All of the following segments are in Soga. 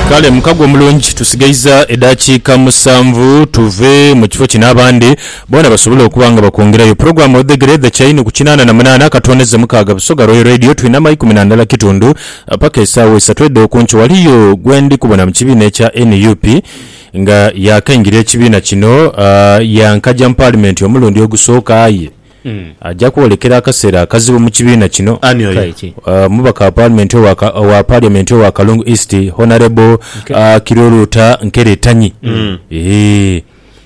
Kale mukago omulungi tusigaiza edhakiika musanvu tuve mu kifo kino abandi boona basobole okuba nga bakwongerayo. Pulogulaamu Odhegere edha kyaini ku kinaana na munaana akatono ze mukaaga Busoga Royal Radio twinama ikumi na ndala kitundu paka esaawa isatu edh'okunkyo. Ghaliyo gwe ndi kubona mu kibiina ekya nup nga yaakaingira ekibiina kino, yaankaja mu paalimenti omulundi ogusooka aye, Aja kwolekera akaseera akazibu mu kibiina kino. Ani oyo? Omubaka wa Paalimenti owa owa Parliament owa Kalungu East, Honourable Kiruruta Nkere Tanyi eeh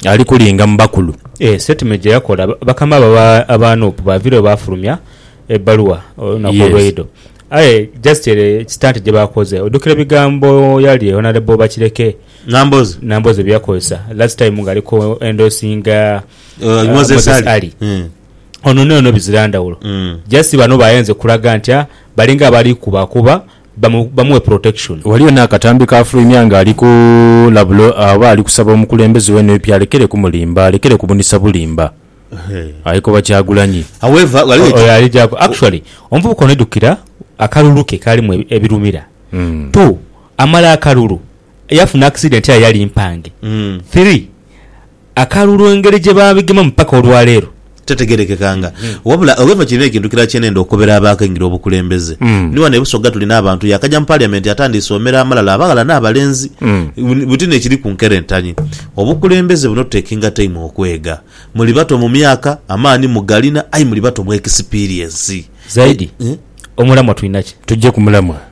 ali kulinga mu bakulu. Eeh statement gye yakola bakama be aba nup baaviireyo baafulumya ebbaluwa olunaku olweidho. Aye just ere ekisitante gye baakoze ojjukira ebigambo yali ye Honourable Bakireke Nambooze bye yakozesa last time ng'ali ku endorsinga Uh, uh, Moses Moses Ali. Ali. Mm. ono nono bizira ndawulo Mm. just bano bayenze kulaga nti ah, balinga abali kubakuba bamu- bamuwe protection waliyo n'akatambi kafulumya nga ali ku labulo oba ali kusaba omukulembeze we nup alekere kumulimba alekere kubunisa bulimba Hey. ayekoba kyagulanyi however waliwo oyo ali jaku actually omuvubuka ono ejukira akalulu ke kalimu ebi- ebirumira Mm. two amala akalulu yafuna accident ya yali mpange Mm. three Akalulu engeri gye baabigemamu paka olwaleero titegerekekanga wabula Owino kirina ekintu kirala kye nenda okobera abaakaingira obukulembeze. Ni wano e Busoga tulina abantu yaakaja mu Parliament atandiise omera amalala abaghala n'abalenzi buti n'ekiri ku nkerentanyi. Obukulembeze buno tutekinga time okwega. Muli bato mu myaka, amaani mugalina aye muli bato mu experience. Zaidi, omulamwa tulina ki? Tujje ku mulamwa.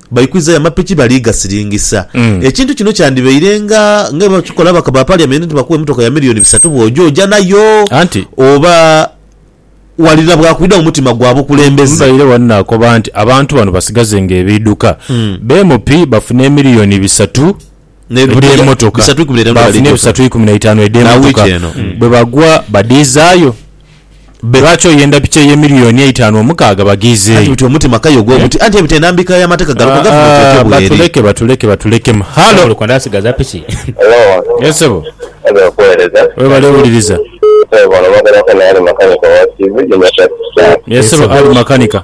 Baikwizayo amapiki bali gasiringisa. Ekintu kino kyandibaire nga nga bwe bakikola ababaka ba Parliament nti bakuwa emotoka ya milioni bisatu bw'oja oja nayo Anti. oba wali na bwakwidha mu mutima gwa bukulembeze. Mbaire wano nakoba nti abantu bano basigazenga ebiidhuka. Bemupi bafune emiliyoni bisatu. Ebuli emotoka baafunha ebisatu ikumi na itaanu edh'emotoka bwe bagwa badhizaayo. Bbe lwaki oyenda piki eye miliyooni eitaanu omukaaga baghiizeeyo? Batuleke, batuleke, batuleke. Halo! Webale wuliriza. Ye ssebo Ali makanika.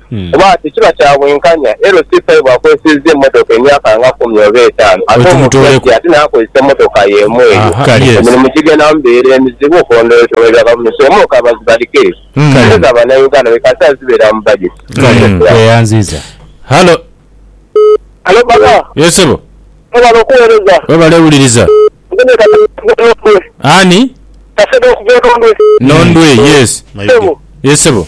kuba tekiba kya bwenkanya era osiisa aye bw'akozesezza emmotoka emyaka nga kumi oba etaanu ate omubyaji ate n'akozesa emmotoka y'emu eyo, emirimu gigenda mubeera emizibu okulondoola mu bya gavumenti oba okaba zibalike sente za Bannayuganda be kasita zibeera mu bajeti. Halo. Halo baba. Yes sebo. Webale okuwereza. Webale wuliriza. Nze kasede okuva enondwe. Ani? Kasede okuva enondwe. Nondwe yes. Sebo. Yes sebo.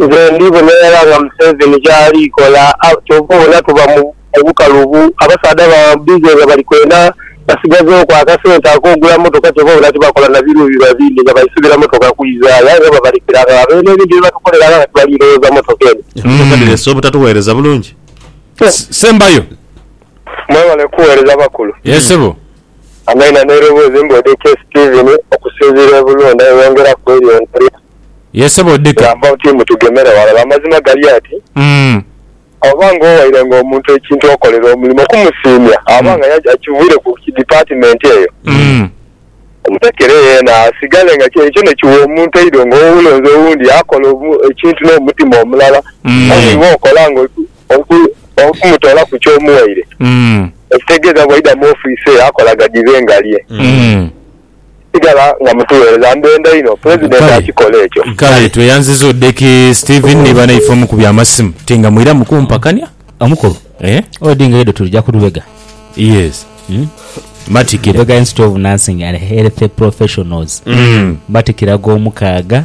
Nze ndi bona irala nga museveni kyali kola kyova obona tuba mu bukalubu abasaadha ba busy nga bali kwena basigazewo ku akasente akogula motoka kyova obona tibakola na biruubilwa bindi nga baisubira motoka kwizayo aye nga babalekera agho abo eno ebindi byebatukolera agho kati bali lowooza motoka eno. Emotoka dhirese obutatuweereza bulungi. Sembayo. Mwebale kuwereza bakulu. Yes sebo. Amaina neroboozi mbwedha ekye Steven okusinziira ebulunde eyongera kwelyongerera. Ye sebo odhike. Gamba oti mutugemere ghalala. Amazima gali ati, oba nga owairenga omuntu ekintu okolere omulimo okumusiimya, aba nga aye akivwire ku dipaatimenti eyo, omutekere yeena asigale nga kye ekyo nekiwa omuntu eidho nga oba olonze owundi akola ekintu n'omutima omulala aye iwe okola nga oli kumutoolaku ky'omuwaire, ekitegeeza bwaidha mu ofiisi eyo akola gadhibe nga lye. sigala nga mutugheereza. Ndhenda inho Pulezidenti akikole ekyo. Kale tweyanziza Odeki Steven ni banaife omu ku by'amasimu. Ti nga mwiramu kumpakania. Omukulu, odi nga idho tuja ku lubega. Yes. Matikira. Lubega Institute of Nursing and Health Professionals. Matikira g'omukaaga.